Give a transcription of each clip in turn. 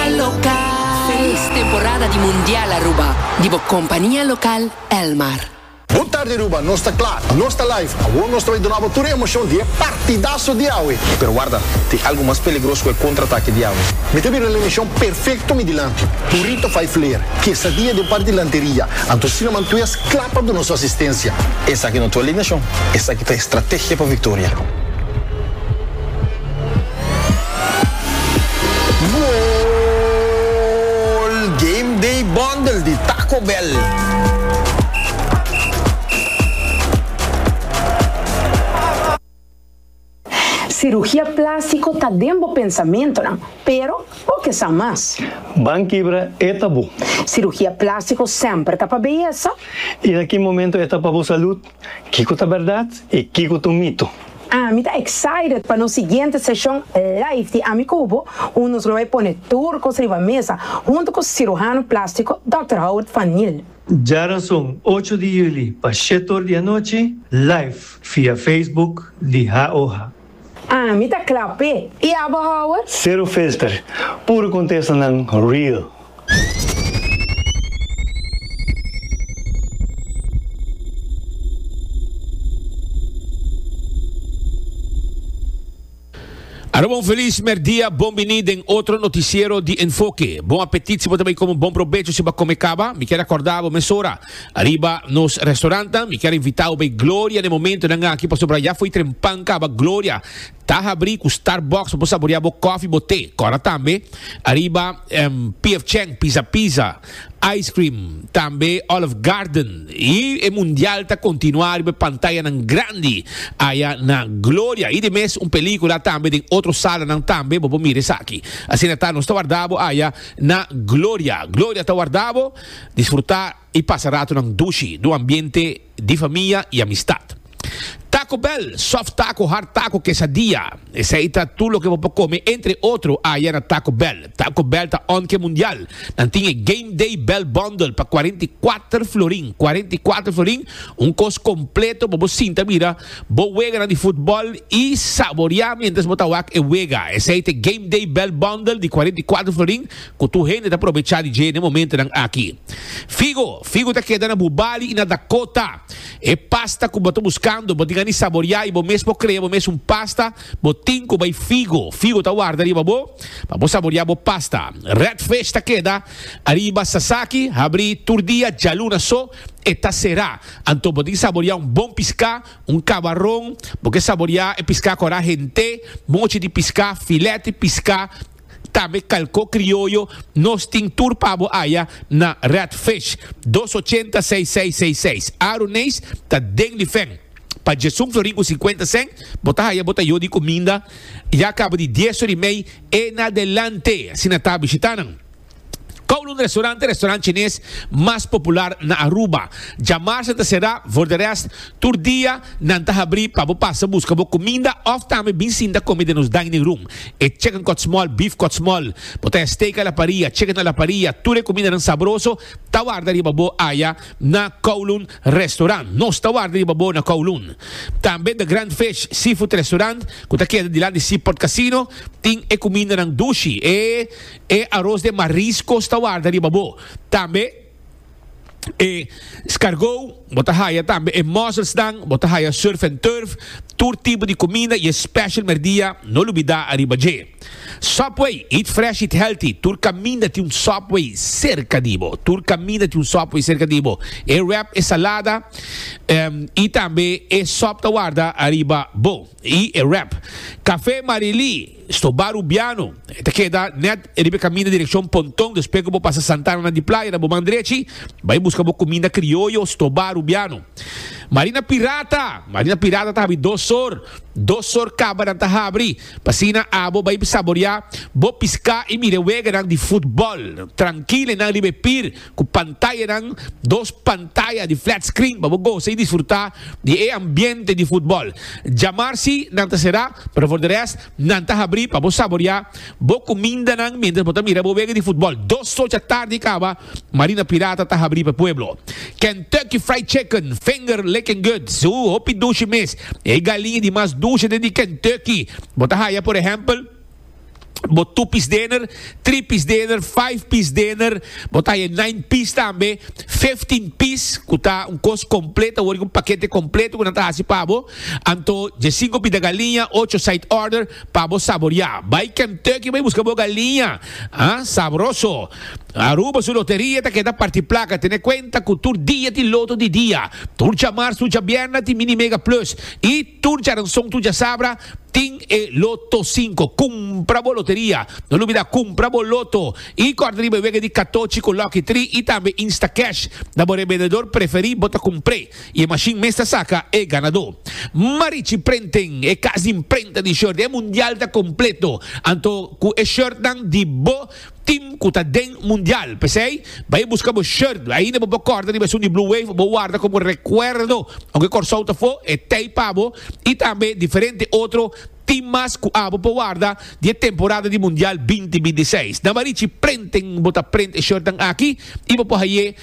Felis temporada di Mundial Aruba di bo compania local Elmar. Bon tarde Aruba, nos ta kla, nos ta live. Awor nos ta bai duna bo tur e emocion di e partidaso di awe. Pero warda, tin algo mas peligros ku e contraatake di awe. Mi ta bira el emishon perfekto mi dilanti. Burrito vijf leer, kesadia den par di lanteria, anto Sina Mantues kla pa duna su asistensia. Esaki no ta alineashon, esaki ta estrategia pa viktoria. Goal! Game Day Bundle di Taco Bell. Sirugia plástiko ta den bo pensamentunan, pero bo ke sa mas. Ban kibra e tabú. Sirugia plástiko semper ta pa beyesa. I na ki momentu e ta pa bo salud? Kiko ta bèrdat i kiko ta un mito? Ami ta excited pa nos siguiente seshon live di Ami Ku Bo, un nos lo bai pone tur kos riba mesa huntu ku sirujano plástiko Dòkter Howard van Niel. Djarason ocho di juli pa shet or di anochi live via Facebook di HaOha. Ah, mi ta kla p'e. I abo hour? Sero filter, puro contestanan real. Aruba un feliz merdia, bon bini den otro noticiero di Enfoke. Bon apetit si bo ta bai come, bon probecho si bo a come caba. Mi kier acorda bo mesora. Ariba nos restaurantan mi kier invitao bay Gloria den momentonan aki pasobra ya fo'i trempan caba Gloria ta habri cu Starbucks pa bo saborea bo coffee bo te cora tambe ariba em PF Chang Pizza Pizza ice cream tambe Olive Garden y e mundial ta continua ariba e pantayanan grandi aya na Gloria y de mes un pelicula tambe den otro salanan tambe bo por mira esaki asina ta nos ta warda bo aya na Gloria Gloria ta warda bo. Disfrutá i pasa ratonan dushi n'un ambiente di famia i amistat. Taco Bell, soft taco, hard taco, quesadilla, esei ta tur loke bo por come entre otro aya na Taco Bell. Taco Bell ta on ke mundial. Nan tin e Game Day Bell Bundle pa cuarenta i cuater florin, cuarenta i cuater florin, un kos completo pa bo sinta mira bo weganan di futbol i saboreá mientras bo ta wak e wega. Esei ta e Game Day Bell Bundle di cuarenta i cuater florin ku tur hende ta probechá di dje na e momentunan aki. Figo, Figu ta keda na bu bali i na Dakota. E pasta ku bo ta buskando bo tin a ni saboriá i bo mes por krea bo mes un pasta, bo tin ku bai figo. Figo ta warda riba bo pa bo saboriá bo pasta. Redfish ta keda ariba Sasaki, habrí tur dia, djaluna so e ta será. Anto bo tin ki saboriá un bon piská, un kabaron, bo ke saboriá e piská kora hent'é, mochi di piská, filèt di piská, Tambe kalko krioyo nos tin tur pa bo aya na Red Fish dos ochenta seis seis seis seis Aaron Nees ta den di fen pa Jason Florin ku sinkuenta sèn bo ta haya bo ta yo di kuminda ya kaba di dies or i mei e na delante asina ta bishita nan. Kowloon Restaurant e restaurant chines mas popular na Aruba. Djamarsa ta será, for de rest, tur dia nan ta habrí pa bo pasa buska bo kuminda òf tambe bin sinta kome den nos dining room. E chicken kòtsmòl, beef kòtsmòl, bo ta haya steak a la parrilla, chicken a la parrilla, tur e kumindanan sabroso ta warda riba bo aya na Kowloon Restaurant. Nos ta warda riba bo na Kowloon. Tambe The Grand Fish Seafood Restaurant, ku ta keda dilanti Seaport Casino, tin e kumindanan dushi, e. E aros den mariscos ta warda riba bo. Tambe e scargou, bo ta haya tambe e musselsnan, bo ta haya surf and turf, tur tipo di cuminda y e special merdia, no lubida ariba dje. Subway, eat fresh, eat healthy, tur caminda tin un Subway cerca di bo, tur caminda tin un Subway cerca di bo. E wrap, e salada y tambe e sop ta warda ariba bo y e wrap. Café Marily. Stobá Rubiano, e ta keda nèt riba e kaminda direkshon Ponton, despues ku bo pasa Santana di Playa na bo man drechi, bai buska bo kuminda krioyo Stobá Rubiano. Marina Pirata, Marina Pirata ta habri dos sor, dos sor kabanan ta habri, pa asina abo bai saboreá bo piská i mira e weganan di futbòl, trankil enan riba e pir, Ku pantayanan, dos pantaya di flat screen pa bo gosa i disfrutá di e ambiente di futbòl. Djamar si nan ta será, pero for di rest nan ta habrí pa bo saboriá bo kumindanan miéntras bo ta mira bo wega di futbòl. Dos socha tardi kaba, Marina Pirata ta habrí pa e pueblo. Kentucky Fried Chicken, finger licking good, suu hopi dushi mes. E galiña di mas dushi den di Kentucky bo ta haya, por ehèmpel. Bo two piece dinner, three piece dinner, five piece dinner, bo ta je nine piece tambe, fifteen piece ku ta un kos kompleto, wor un pakete kompleto ku nan ta hasi pa bo. Anto je sinku pita galiña, ocho side order pa bo saboreá. Bai Kentucky bai buska bo galiña, ha, sabroso. Aruba su loteria ta keda parti plaka, tene kuenta ku tur dia tin loto di dia. Tur djamarz, tur djabierna tin mini mega plus. I tur djaranson, tur djasabra. Tin e Loto Cinco. Cumpra bo loteria. No lubida cumpra bo Loto y corta riba e wega di Catochi cu Lucky Three y tambe Instacash. Na bo revendedor preferi bo ta cumpre y e machine mes ta saca e ganador. Marichi Printing, e cas di imprenta di shirt, e mundial ta completo. Anto cu e shirtnan di bo. Team cu ta den mundial. P'esey, bay busca bo shirt. Ainda bo por corta riba esun di Blue Wave, bo warda como recuerdo aunke Corsou ta fo, e tey pa bo y tambe diferente otro team mas cu abo por warda di e temporada di mundial binti binti seis. Nan barichi printen bo ta print e shirtnan aki y bo por haye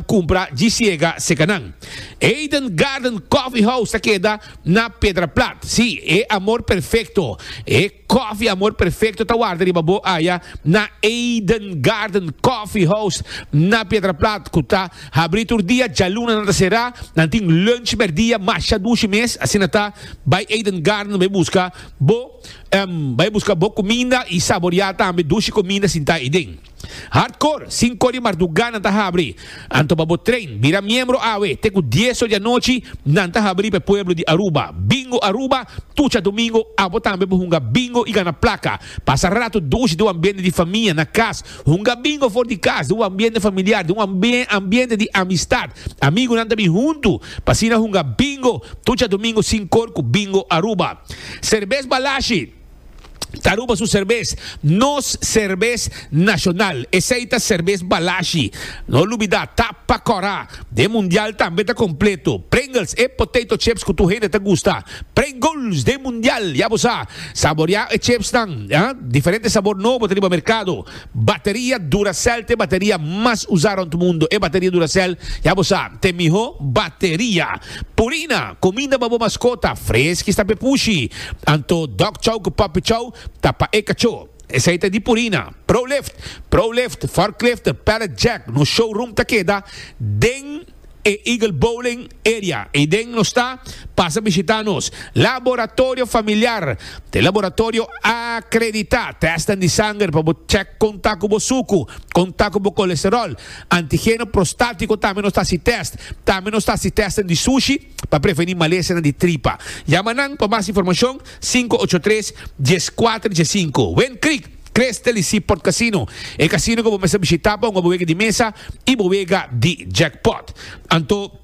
cumpra djisiega seca nan. Eden Garden Coffee House ta keda na Pedraplat. Si, e amor perfecto. E. Koffie Amor Perfecto ta warda riba bo aya na Eden Garden Coffee House na Pietraplat cu ta habri tur dia, djaluna nan ta cera, nan tin lunch merdia masha dushi mes, asina ta bay Eden Garden bay busca bo bay busca bo cuminda y saboria tambe dushi cuminda sinta ayi den. Hardcore, Sinko di marduga nan ta habri. Anto pa bo train, bira miembro awe, te ku dies or di anochi nan ta habri pa e pueblo di Aruba. Bingo Aruba, Tucha domingo abo tambe por hunga bingo i gana plaka. Pasa ratu dushi den un ambiente di famia, na kas. Hunga bingo for di kas, den un ambiente familiar, den un ambiente di amistad. Amigunan ta bin huntu, pa asina hunga bingo tucha domingo Sinkor ku Bingo Aruba. Serbes Balashi. Aruba su serbes, nos serbes nacional, esey ta serbes Balashi. No lubida, tap pa cora, den mundial tambe ta completo. Pringles, e potato chips cu tur hende ta gusta. Pringles den mundial, ya bo sa. Saboria e chipsnan, diferente sabor nobo ta riba mercado. Bateria Duracell t'e bateria mas usá rònt mundu. E bateria Duracell, ya bo sa, t'e mihó bateria. Purina, kuminda pa bo maskota, freski sta p'e pushi. Anto Dog Chow ku Puppy Chow ta pa e kachó. Esei ta di Purina. Prolift, Prolift, Forklift, Pallet Jack, nos showroom ta keda den. e Eagle Bowling Area ei den nos ta, pasa bishita nos Laboratorio Familiar, ta e laboratorio akreditá, tèsten di sanger pa bo chèk kon ta ku bo suku, kon ta ku bo kolesteròl, antigeno prostátiko tambe nos ta hasi tèst, tambe nos ta hasi tèsten di sushi pa prevení malesanan di tripa. Yama nan pa mas informashon sinku ocho tres, dies kuater, dies sinku. Windcreek. Crystal y Seaport Casino, e casino cu bo mester bishita pa hunga bo wega di mesa y bo wega di jackpot. Anto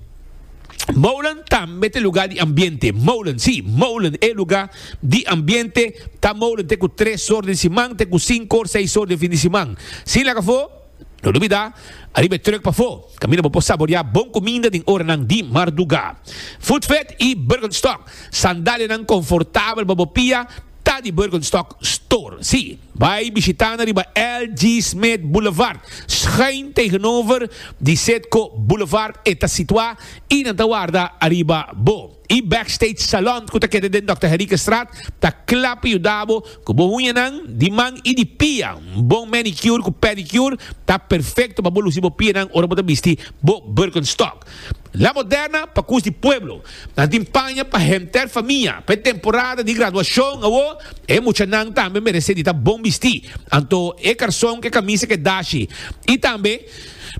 Molen tambe ta lugar di ambiente. Molen, si, Molen e lugar di ambiente ta Molen te cu tres or di siman te cu cinco or seis or di fin di siman. Sin laga fo. No dubidá, ariba e truck pafó, kaminda bo por saboriá bon kuminda den oranan di mardugá. Foodfed i Birkenstock, sandalianan konfortabel pa bo pia, ta di Birkenstock Store. Sí, bai bishitá nan riba LG Smith Boulevard, schuin tegenover di Citgo Boulevard, e ta situá i nan ta warda ariba bo. E Backstage Salon cu ta keda den Dòkter Herikenstraat ta cla pa yuda bo cu bo uñanan di man y di pia. Un bon manicure cu pedicure ta perfecto pa bo luci bo pianan ora bo ta bisti bo Birkenstock. La Moderna pa cus di pueblo. Nan tin paña pa henter famia. Pa e temporada di graduacion awo e muchanan tambe merece di ta bon bisti. Anto e carson cu e camisa ke dashi. Y tambe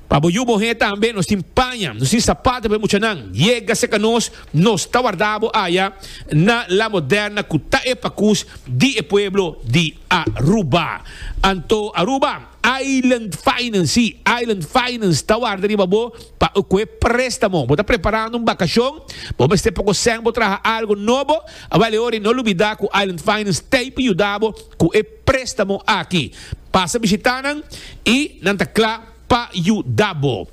Pa bo yu bo he tambe nos tin paña, nos tin sapato pa e muchanan. Yega serka nos, nos ta warda bo aya na La Moderna ku ta e pakus di e pueblo di Aruba. Anto Aruba Island Finance, si, Island Finance ta warda riba bo pa ku e prestamo. Bo ta preparando un bakashon, bo mester poko sèn bo traha algu nobo, awal e ora i no lubida ku Island Finance ta ei pa yuda bo ku e. Préstamo aki. Pasa bishitá nan i nan ta kla pa yuda bo.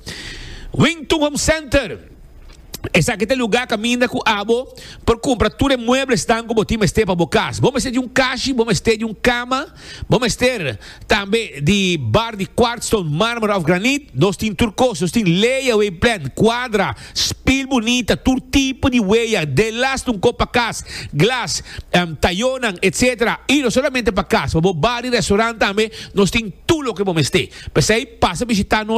Wington Home Center, Esaki ta e lugá kaminda ku abo por kumpra tur e mueblesnan ku bo tin mester pa bo kas. Bo mester di un kashi, bo mester di un kama, bo mester tambe di bar di kwartston, mármara òf granit. Nos tin tur kos. Nos tin leya, wei plèn, kwadra. Spil bunita, tur tipo di weya, delas un kop pa kas, glas, tayonan, etc. Y no solamente pa kas, pa bo bar y restaurant tambe nos tin tur loke bo mester. P'esey pasa bishita nos.